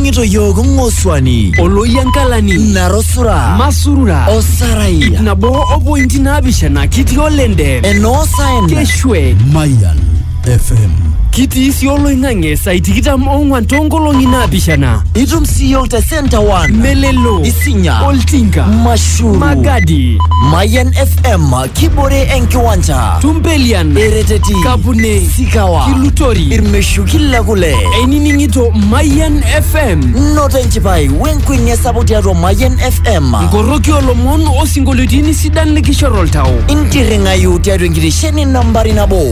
Ning'ito yiok ng'osuani. Oloyiankalani. Narosura. Masurura. Osarai. Ip nabo o pointi naapishana kitii olende. Enoo saen. Keshwe. Mayan FM. Kitii sii oloing'ang'e saai tikitam ong'wan toonkolong'i naapishana. Itum sii yiok te Centre One. Melelo. Isinya. Oltinka. Mashuru. Magadi. Mayan FM kibore enkiwanja Tumpelian, ereteti Kapune, sikawa Kilutori, irmeshuki le kule einining'ito Mayian FM, noto enchipai wenkuenia sapuk tiatua mayian fm nkoroki olomon osinkolioitini sidan likishor oltau. intirring'ayu tiatua enkitesheni nambari nabo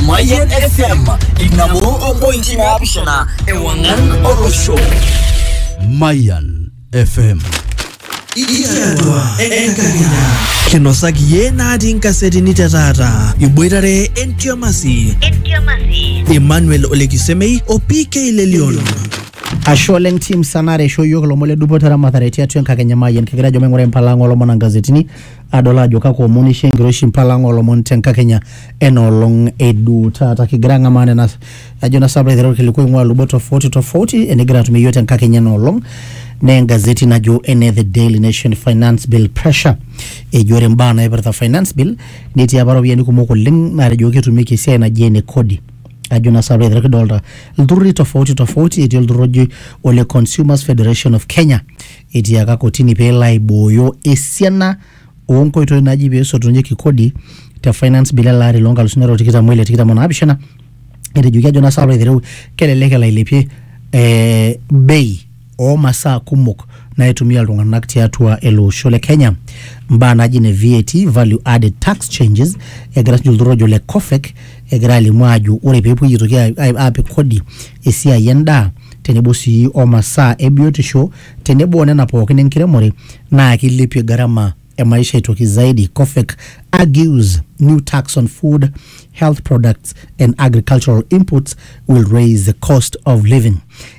mayian fm inabo ompointi naapishana ewang'an olosho Mayan FM. Itiatua enkakenya. Kinosaki ye natii nkasetini te taata. Iboitare entiamasi. Entiamasi. Emmanuel Olekisemei o PK Lelion. Ashe oleng team sanare aisho iyiook ilomon le dupoto eramatare tiatua enkakenya mayian kigira ajo maing'ura empalang'a oolomon ongazetini adol ajo kakwa omon isho enkiroshi mpalang'a oolomon te nkakenya ena olong edu taata kigira ang'amaa nena ajo na sababu aiteru orkilikuai ing'ua lubot tofauti tofauti enigira atumie iyiok tenkakenya ena olong naa engazeti najo ene the daily nation finance bill pressure eji ore imbaa naipirta finance bill netii apa iropiyiani kumok oleng naatejo ketumieki esiai naji ene kodi ajo na sababu aiteru kidolta ilturruri tofauti tofauti etii olturrur oji ole consumers federation of kenya etiaka kotini peelo aibooyo esiana oo nkoitoi naaji pee esotunyeki kodi te finance bill ele ari loo nkalusuni are o tikitam oile tikitam o naapishana etejoki ajo nasaa ore aitereu kelelek elo ailepie eh, bei oo masaa kumok naitumia iltung'anak tiatua ele osho le Kenya mbaa naaji ne VAT value added tax changes egira sinye olturrur ojo le COFEC egira alimu aajo ore peepuoi aitoki a- a- aapik kodi esiai endaa tenebo sii o masaa e biotisho tenebo o nena pookin enkiremore naa keilepie garama e maisha aitoki zaidi, COFEK argues new tax on food, health products and agricultural inputs will raise the cost of living.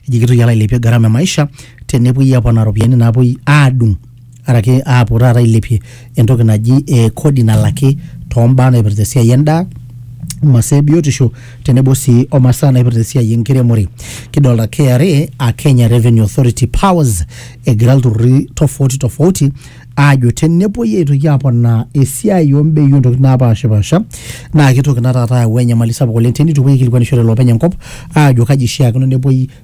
Eji kitoki alo ailepie garama e maisha tenepuoi aponaa ropiyiani naapuoi aadung' araki aapuo taata ailepie entoki naji eh, kodi nalaki tombaa naipirta esiai endaa masaa ebiotisho tenebo sii omasaa naipirta esiai enkiremore kidolta KRA a Kenya Revenue Authority powers egira ilturruri tofauti tofauti aajo tenepuoi aitoki aponaa esiai ombei ontokitin napashipasha naa kitoki ina taata ayau enyamali sapuk oleng teneitu epuoi aikilikuanishore iloopeny enkop aajo kaji ishiakino nepuoi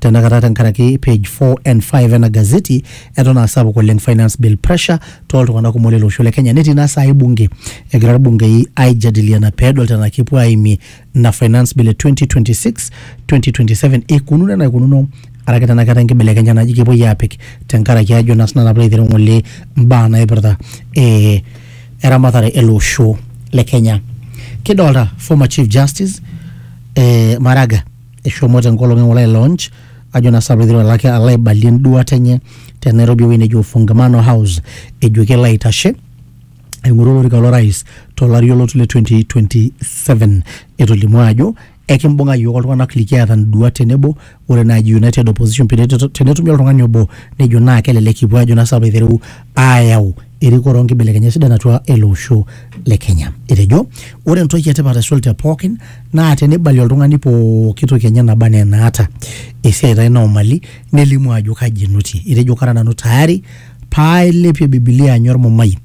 tenakata tenkaraki page 4 and 5 ena gazeti eton aa sapuk oleng finance bill pressure tooltung'anak kumok lele osho le Kenya netii naa saai bunge egira irbungei aijadiliana peedol tenaa kepuo aimie ina finance bill e 2026 2027 eikununo enaa eikununo araki tenaa keetae enkibelekenya naji kepuoi aapik tenkaraki ajo naa sinanu apilo aitereu ng'ole mbaa naipirta eh, eramatare ele osho le Kenya kidolta former chief justice eh, Maraga eshomo tenkolong eng'ole ai launch ajo naa saa peiteru alaki alo aibalie enduata enye te Nairobi ewueji neji Ufungamano House ejo kelo aitashe aing'oru olorika lorais tolari olotu le 2027 etolimuo ajo ekimbung'a iyiook oltung'anak likiata nduat tenebo ore naaji United Opposition pene- tenetumi oltung'ani obo nejo naa kelelek kipuo ajo naa saa peiteru aayau erikore onkibelekenyat sidan atua ele osho le Kenya. Etejo ore entoki etipat aisul te pookin naa teneibalie oltung'ani pooki toki enye naba anaa enaata esiai taa ina omali nelimu ajo kaji enotie. Etejo kara nanu tayari paailepie Bibilia anya ormumai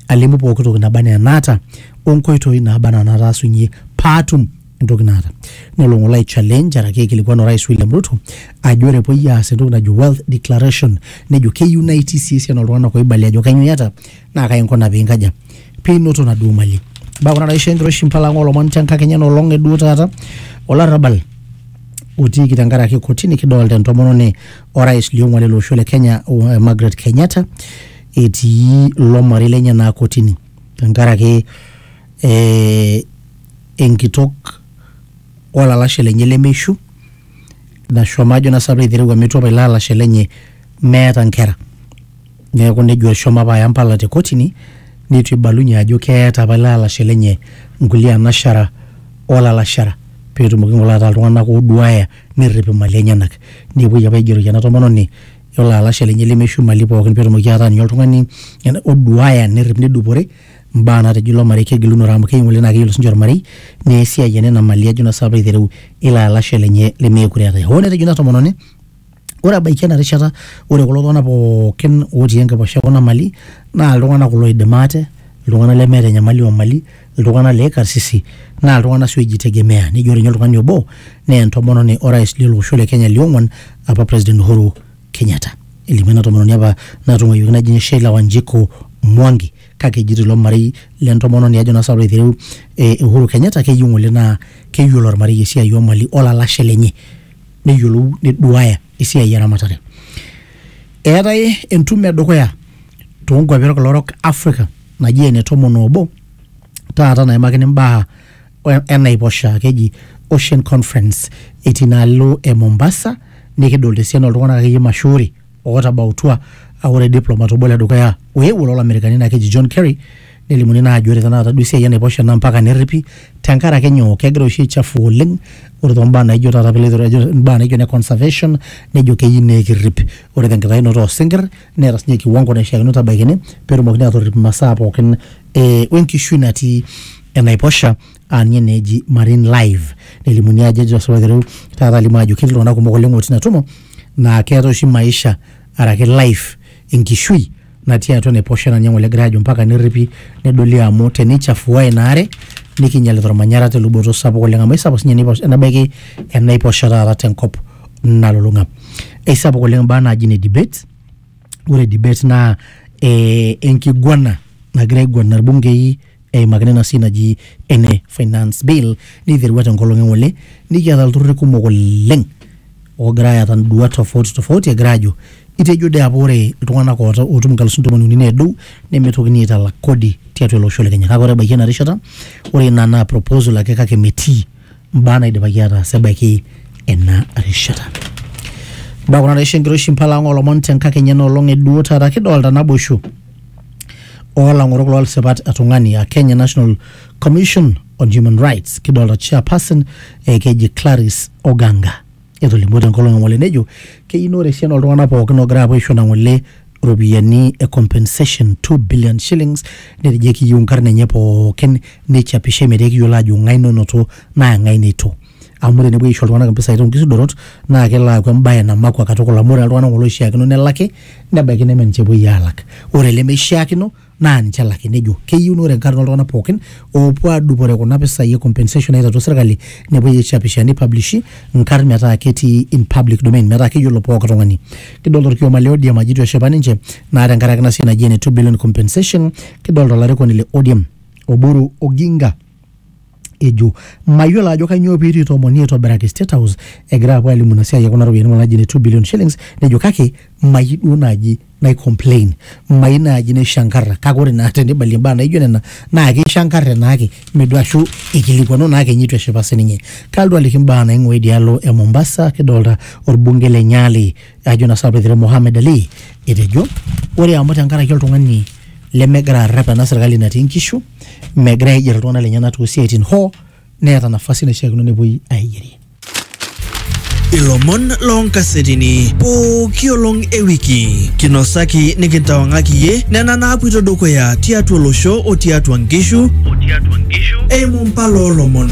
alimu pooki toki naba anaa enaata onkoitoi naaba anaa nataasunyie paatum entoki naata nelo ng'ole ai challenge araki aikilikuan orais William Ruto ajo ore epuoi aas entoki najo wealth declaration nejo keyieu naa itii sii esiana oltung'anak oibalie ajo kanyoo iyata naa kai inkuna piinkaja piinoto naduo mali imbaa kuna naisho enkiroshi impala ang olomon te nkakenya ena olong eduo taata olarrabal otiiki tenkaraki kotini kidolta entomononi orais liong'uan ele osho le Kenya o- Margaret Kenyatta etii ilo marei lenye naa kotini tenkaraki ee enkitok olalashe lenye lemeishu nashomo ajo naa sinanu aitereu amu itu apa ilo alashe lenye meeta nkera. Neeku nejo eshomo apa aya impala te kotini nitu ibalunye ajo keeta apa ilo alashe lenye nkulie anashara o lalashara peetumoki ng'ole ataa iltung'anak ooduaya nerrip imali enyenak. Nepuoi apa aigeroki ena tomononi... yiolo alashe lenye lemeishu imali pookin petumoki ataa ninye oltung'ani ena- oduaya nerrip nedupore imbaa natejo ilo marei kegilunore amu kei ng'ole naa keyiolo sinche ormarei naa esiai enena mali ajo naa sinanu piilo aitereu ilo alashe lenye lemeekure eetae hoo netejo ina tomononi ore ebaiki ena rishata ore kulo tung'anak pookin otii enkiposha ekuna mali naa iltung'anak kulo oidim ate iltung'anak lemeeta enyamali omali. iltung'anak le karsisi naa iltung'anak sii oijitegemea nejo ninye oltung'ani obo naa entomononi orais lilo osho le Kenya liong'uan apa President Uhuru Kenyatta. Elimu ena tomononi apa natung'uayioki naji ninye Sheila Wanjiku Mwangi kake ejito ilo marei le ntomononi ajo naa sababu aitereu eh, Uhuru Kenyatta keyieu ng'ole naa keyieu ilo marei esiai oo mali olalashe lenye neyiolou neduaya esiai eramatare. Eetae entumo edukuya toonkuapi olkila orok Africa naji ene tomon obo taata naimakini mbaa e- enaiposha keji ocean conference etii inaalo e mombasa nikidolta esiana oltung'anak akeyie mashuuri ootabautua aa ore diplomat obo ledukuya oewuo lolamerikani naa keji john kerry nelimuni naa ajo ore tenakata duo esiai enaiposha naa mpaka nerripi tenkaraki nyoo kegira oshi aichafu oleng ore tombaa naijo taata piloito ejo imbaa naijo ine conservation nejo keyieu nekirrip ore tenkitayunoto osinkirr neeta sinye kiwango naishiakino tabaikini petumokini atorrip imasaa pookin e wenkishui natii enaiposha aa ninye naa eji marine live nelimuni ajo ejo osirua aiteru taata alimu ajo ketii iltung'anak kumok oleng otii ina tumo naa keeta oshi maisha araki life enkishui natii atua enaiposha naa ninye ng'ole egirae ajo mpaka nerripi nedoli amu teneichafua ina are nikinyialita ormanyara teluboto sapuk oleng amu aisapuk sinye enaiposha nebaiki enaiposha taata tenkop. nalulung'a eisapuk oleng imbaa naaji ne debate ore debate naa eh, enkiguana nagira aiguana irbungei eimakini ena siai naji ene finance bill niterua tenkolong eng'ole nikiata ilturruri kumok oleng ogira ayata induat tofauti tofauti egira ajo itejo dee apa ore iltung'anak oota otum inkalusuni tomon uni nedou nemitokini aitalak kodi tiatua ele osho le kenya kake ore ebaiki ena rishata ore ina naa proposal ake kake metii mbaa naidipaki ataas ebaiki ena rishata mbaa kuna naisho enkiroshi mpala ang olomon tenkakenya ena olong eduo taata kidolta naboisho oolang'orok loolsipat etung'ani a Kenya National Commission on Human Rights kidolta chairperson eh, keji Clarice Oganga Etolimuo tenkolong e ng'ole nejo keyieu naa ore esiana ooltung'anak pookin oogira aapuo aisho ina ng'ole iropiyiani e compensation 2 billion shillings netejo ekiyieu inkarn enye pookin neichapishai metaa ekiyiolo aajo ng'ae nonoto naa ng'ae neitu. Amu ore enepuoi aisho iltung'anak impisai toonkisudorot naa kelo aaku embae namakua katukul amu ore taa iltung'anak ng'ole oishiakino nelaki nebaiki neme ninche epuoi aalak. Ore ilemeishiakino naa ninche elaki nejo keyieu naa ore enkata oltung'anak pookin oopuo aadupore kuna pisai e compensation naitatua serkali nepuoi aichapisha nipublishi nkarn metaa ketii in public domain metaa keyiolo pooki tung'ani kidolta orkioma le ODM ajo itu eshipa ninche naa tenkaraki ina siai naji ene 2 billion compensation kidolta olarikoni le ODM Oburu Oginga ejo mayiolo ajo kainyoo pee eitu itomoni aitobiraki State House egira apuo alimu ina siai e kuna ropiyiani naji ne 2 billion shillings nejo kake mayieu duo naaji nai complain mayieu naaji naishankarra kake ore naa tenibalie imbaa naijo nena naa keishankarre naake meduo ashu eikilikuanu naake ninye eitu eshipa sininye. Kalotu aliki imbaa naing'ua idialo e Mombasa kidolta orbungei le Nyali ajo na sina peter mohamed ali etejo ore amu tenkaraki oltung'ani lemegira arrep ena serkali natii nkishu megira aiger iltung'anak lenyenak tosiaitin hoo neeta nafasi naishiakino nepuoi aigerie ilomon loonkasetini pooki olong e wiki kinosaki nikintawang'aki iyie nena naapuito dukuya tiatua olosho o tiatua nkishu eimu mpala oolomon